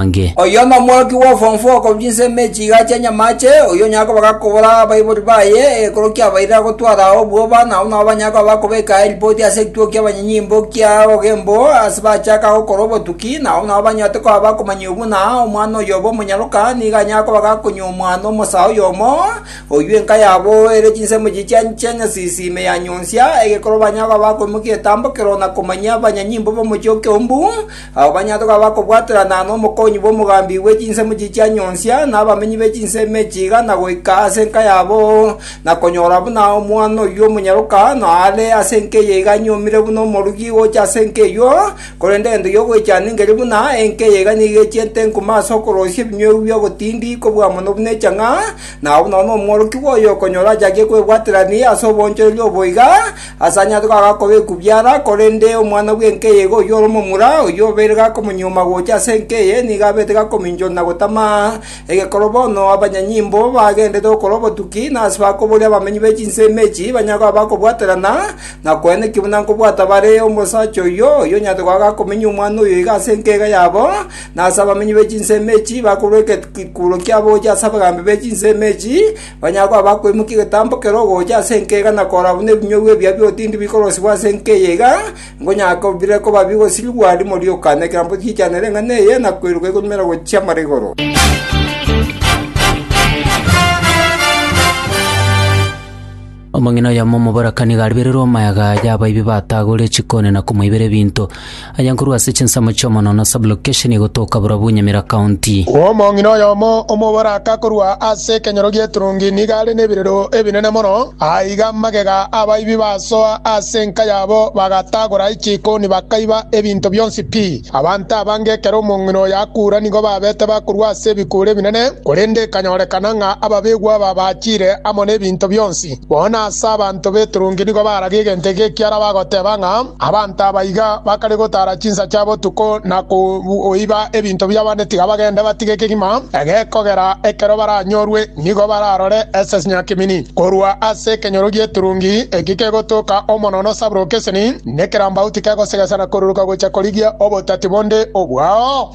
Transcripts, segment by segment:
amange. Oyio nomworoki bw'obofongo okorwa chinsemo echiiga chi'enyamaache, oyio onyare koba gakobora abaibori baye ekero kiabairire agotwara ao obwoba, na abwo nabo banyare koba bakobeka eripoti ase ekituo ki'abanyanyimbo kia obogembo ase bachaka gokora obotuki, na abwo nabo banyote koba abakomanya obwe ng'a omwana oyobe omonyaroka nigo anyare koba gakonywa omwana omosa oyomo, oyio enka yabo ere chinsemo echiiya chiancha chi'enyasisi ime ya nyonsia, egekero banyare koba bakoimokia egetambo keroo na komanyia abanyanyimbo b'omochie o Keumbu, Abo banyato gabo bakobwaterana nomokonyi bw'omogambi bwe chinsemo echi chia nyonsia, na abamenyi be chinsemo echi igana goika ase enka yabo, na konyora buna omwana oyio omonyaroka noare ase enka eye iga anyuomire buna omorugi gocha ase enka eyio, korende egento gi'ogoichana ngeri buna enka eye iga nigo echiete enkuma ase okoroosia ebinywegwa bi'ogotindi kobua mono buna echang'a, nabo buna omworokigwa oyo okonyora achakie kwebwaterania ase oboonchoreria obo iga, Asanyarete goaka koba ekubiara, korende omwana bw'enka eye iga oyio ore omomura, oyio obeire gakomonyioma gocha ase enka eye, nigo abete gakominchora na gotama. Egekoro bono abanyanyimbo bagendererete gokora obotuki, na ase bakoboria abamenyi be chinsemo echi banyare koba bakobwaterana, na koena ekibe buna nkobwata bare omosacha oyio, oyio onyarete goaka akominyia omwana oyo iga ase enka iga yabo, na ase abamenyi be chinsemo echi bakorua egeikuro kiabo gochia ase abagambi be chinsemo echi, Onye akoa bakoimokia egetambo kere ogocha ase enka iga na korora buna ebinyugwa ebia bi'otindi bikorosibwa ase enka eye iga, nkonyaka bire koba bigosirigwa rimo rioka nekerambe gichanere eng'ana eye na koiroka igonyumera gochia mara igoro. Omong'ina oyomo omoboraka nigo aribererwe omayaga y'abaibi batagorire chikoni na komoibera ebinto. Aye nkorwa ase chinsemo chi'omonwa na sub-location egotoka borobwo Nyamira County. Omong'ina oyomo omoboraka korwa ase ekenyoro gi'eturungi nigo are nebirero ebinene mono. Aiga magega abaibi basoa ase enka yabo bagatagora chikoni bakaiba ebinto bionsi pi. Abanto abange ekero omong'ina oyo akuura nigo babete bakorua ase ebikuuri ebinene, korende ekanyorekana ng'a ababegwa aba bachire amo nebinto bionsi. Bono ase abanto b'eturungi nigo baragia egento eke ekiara bagoteba ng'a abanto aba iga bakare gotara chinsa chia botuko na koiba ebinto bi'abande tiga bagende batige ekegima egekogera ekero baranyorwe nigo bararore esesnya kimini korwa ase ekenyoro gi'eturungi eki kegotoka omono nosaburoka eseni Nekerambau tikegosegesa na koruruka gocha korigia obotati bonde obwao.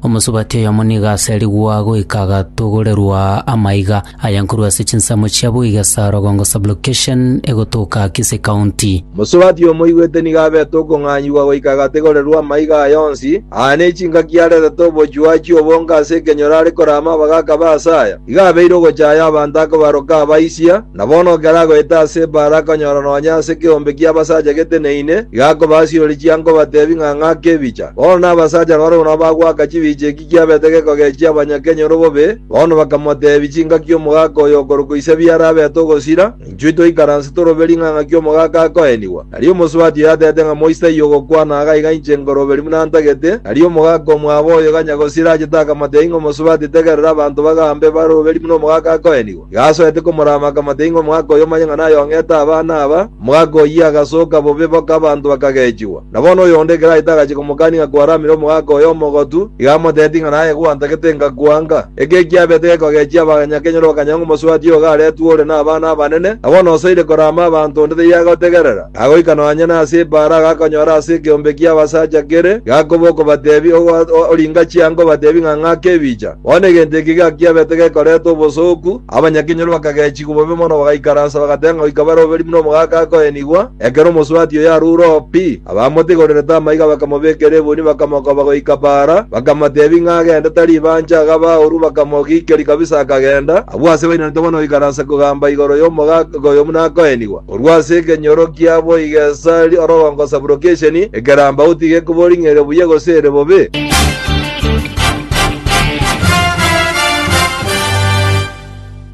Omosubati oyomo nigo aserigwa goika agatogorerwa amaiga aya nkorwa ase chinsemo chia Buige Sarogongo Sublocation egotoka Kisii County. Mosubati omoigwete nigo abete okong'anyigwa goika agategorerwa amaiga aya onsi, aa ne chingaki aretete obochuachi obonge ase ekenyoro are korama abagaaka ba Asaya. Igo abeire ogochaya abanto akobaroka abaisia, na bono ekero agoeta ase ebaara akanyora nonya ase ekeombe ki'abasacha geteneine, iga akobasiroria chianga obateebie ng'a ng'ake ebicha. Bono nabasacha barabwo nabo bagoaka chibicha eki kiabete gekogechia abanyakenyoro bobe, bono bakamoteebia chingaki omogaka oyo okorokwa Isabia arabete ogosira, Inchuo toikaranse torobe ring'ang'a ki'omogaaka akoenigwa, nari omosubati oyo atete ng'a moisai ogokwana agaiga inche nkoroberi buna ntagete, nari omogaaka omwabo oyo ganya gosira achete akamate aing'e omosubati tegerera abanto bagambe baroberi buna omogaaka akoenigwa. Iga asoete komorama akamate aing'e omogaaka oyo omanye ng'a nayong'ete abana aba, omogaaka oyio agasoka bobe boka abanto bakagechigwa. Na bono oyonde ekero aete agachia komokania ng'a kwaramire omogaka oye omogotu, iga amoteeti ng'a naye gwantagete ngakwanga. Eke ekiabete gekogechia abaganya kenyora okanyang'a omosubati ogo aretwe ore nabana abanene, na bono osoire korama abanto onde taiyo agotegerera. Agoika nonya nase ebaara agakonyora ase ekeombe ki'abasacha kere, gakoba okobatebi, Oringa chianga obatebi ng'a ng'ake ebicha. Bono egento eke gakiabete gekoreta obosooku, abanyakenyoro bakagechigwa bobe mono bagaikaransa bagateba ng'a goika bare oberi buna omogaka akoenigwa, Ekero omosubati oyo arure oo pi, abamotigorerete amaiga bakamobekera ebuni bakamokoba goika baara, bakamoteebia ng'a agende tari ibanche agaba baoru bakamogiikeria kabisa akagenda, abwo asebairanete bono oikaransa kogamba igoro y'omogaaka oyo buna akoenigwa. Korwa ase ekenyoro kia boigo esari orogongo sublocation, ekeramba outi gekobori ng'a ere buya gose ere bobe.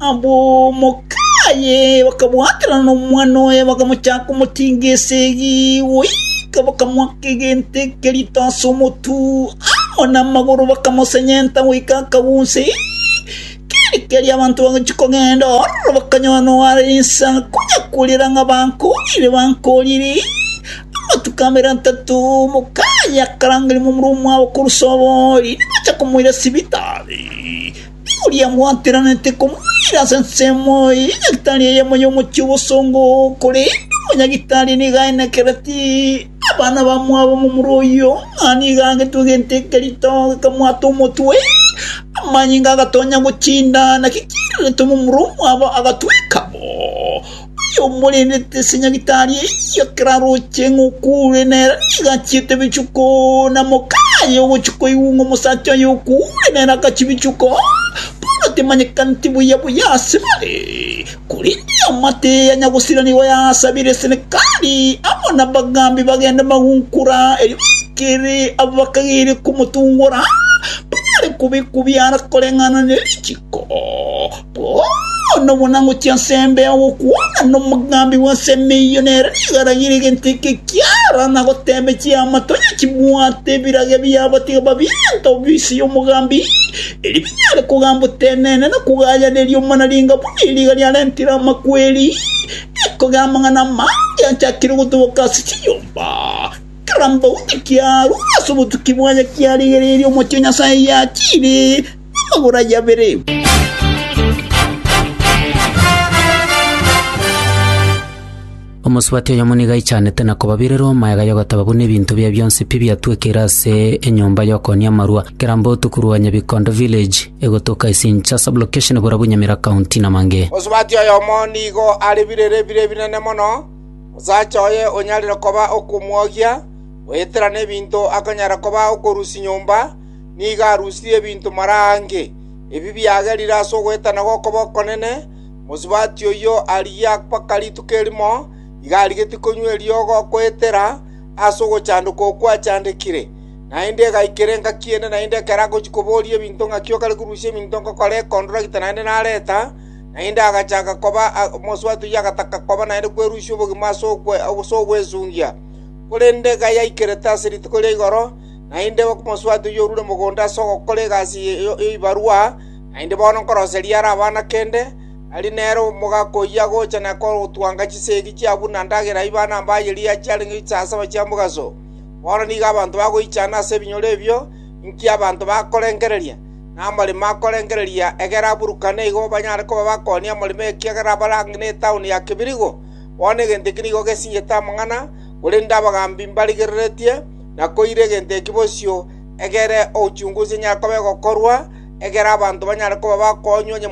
Abwo omoka aye bakabwaterana nomwana oye, bakamochaka komotinga esegi, goika bakamoaka egento eke rito ase omotwe, amo namagoro bakamosenyenta goika akaguunse. Keri keri abanto bagochia kogenda, ororo bakanyora noare insa, konya korera ng'a bankoorire, bankoorire. Amatuko amabere atato omoka aye akarangeria momura omwabo korwa Soboori, nigo acha komoira sibitari. oria gwakeranete komoira ase ensemo eye ya gitari eyemo y'omochie obosongo, korende omonyagitari nigo aenekereti abana bamwabo momura oyio, ng'a nigo agetwe egento eke rito gekamwata omotwe, amanyinga agatonya gochinda, naki kiiraretwe momura omwabo agatweka bo. Yomorendete ase nyagitari eyio ekero aroche ng'a okuure, na ere nigo achiete ebichuko. Na mokama aye ogochia koigwa ng'a omosacha oye okuure, na ere agachia ebichuko. Paulo temanyekaneti buya buya ase bare, korende eamate eye ya nyagosira nigo yaasabire Senekali amo nabagambi bagende magunkora, erio baikere abo bakagere komotungora, banyare kobekwa biara koreng'ana ne richiko. Bono buna ngochia ase embeo gokwana nomogambi bw'ensemo eyio, nere nigo aragire egento eke kiara na goteebia chiama, Tonya chibwate ebirage biabo, tiga babiente obuya inse y'omogambi, erio binyare kogamba otenene na kogayaneria omonaringa buna eriga riarentire amakweri, na ekogera amang'ana amange achakire gotoboka ase chinyomba. Kera mbaume kiarure ase obotuki bwaye kiarigereirie omochie o Nyasae yachiire. Agora yabere. Omosubati oyomo nigo aichanete na kobabirera omoeega y'ogoteba buna ebinto bia bionsi pi biatwekeire ase enyomba y'okoonia amarua, Kirambo otuku rwa Nyabikondo village, egotoka Isincha sublocation Burabu Nyamira county na Mange. Mosubati oyomo nigo are birere bire ebinene mono, omosacha oye onyarire koba okomwogia, goetera nebinto akonyara koba okorusia nyomba, nigo arusirie ebinto mara aange, ebi biagerire ase ogoetana gw'okoba okonene, mosubati oyio arigia mpaka rituko erimo, iga arigetie konywa eriogo goetera ase ogochandoka okwo achandekire. Naende egaikera engaki ende naende ekero agochia koboria ebinto ng'aki okare korusia ebinto ngokora ekontoragita naende nareta, naende agachaka koba mosubati oyio agataka koba naende kwerusia obogima ase ogwesungia. Korende iga yaikerete ase rituko ria igoro. Naende omosubati oyio orure mogondo ase ogokora egasi y'ebibarwa, naende bono nkoroseria are abana kende, tari nere omogaka oyio agocha na kotwanga chisegi chia buna ndagera ibana mbaye riacha chiarenge chisasaba chia mogaso. Bono nigo abanto bagoichana ase ebinyoro ebio, inki abanto bakorengereria? Namaremo akorengereria, egera aburukane igo banyare koba bakoonia amaremo ekiagera abare ang'e netaoni ya kebirigo. Bono egento eke nigo gesinyete amang'ana, korende abagaambi mbarigereretie. na koira egento eki bosio egere ochungusi enyare koba egokorwa, egere abanto banyare koba bakoonywa onye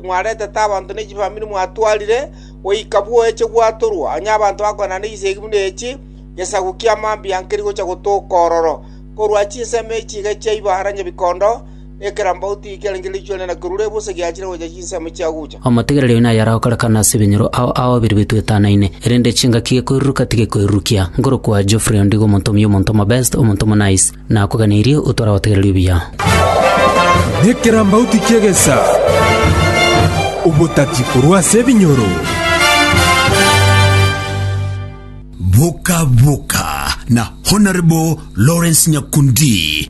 mwaretete abanto ne chifamiri mwatwarire, goika bwoeche gwatorwa, onye abanto bakoenda n'echisegi buna echi, gesaku ki'amambia nkerigocha gotoka ororo korwa chinsemo echi iga chiaibara nyebikondo, Ekerambauti ekiarenge riichwa riane na kerure ebusa egiachire gocha chinsemo chiagucha. Omotigereria oyo naye aragokorekana ase ebinyoro ao ao babere betwetanaine, erende chingaki gekoiruruka tigekoirurukia. Nkorokwa Geoffrey Ondigo omonto omuya omonto omobest, omonto omonaice. Nakoganeirie otware abategereri obuya. Nekerambauti ki'egesa, obotati korwa ase ebinyoro. Boka Boka na Honourable Lawrence Nyakundi.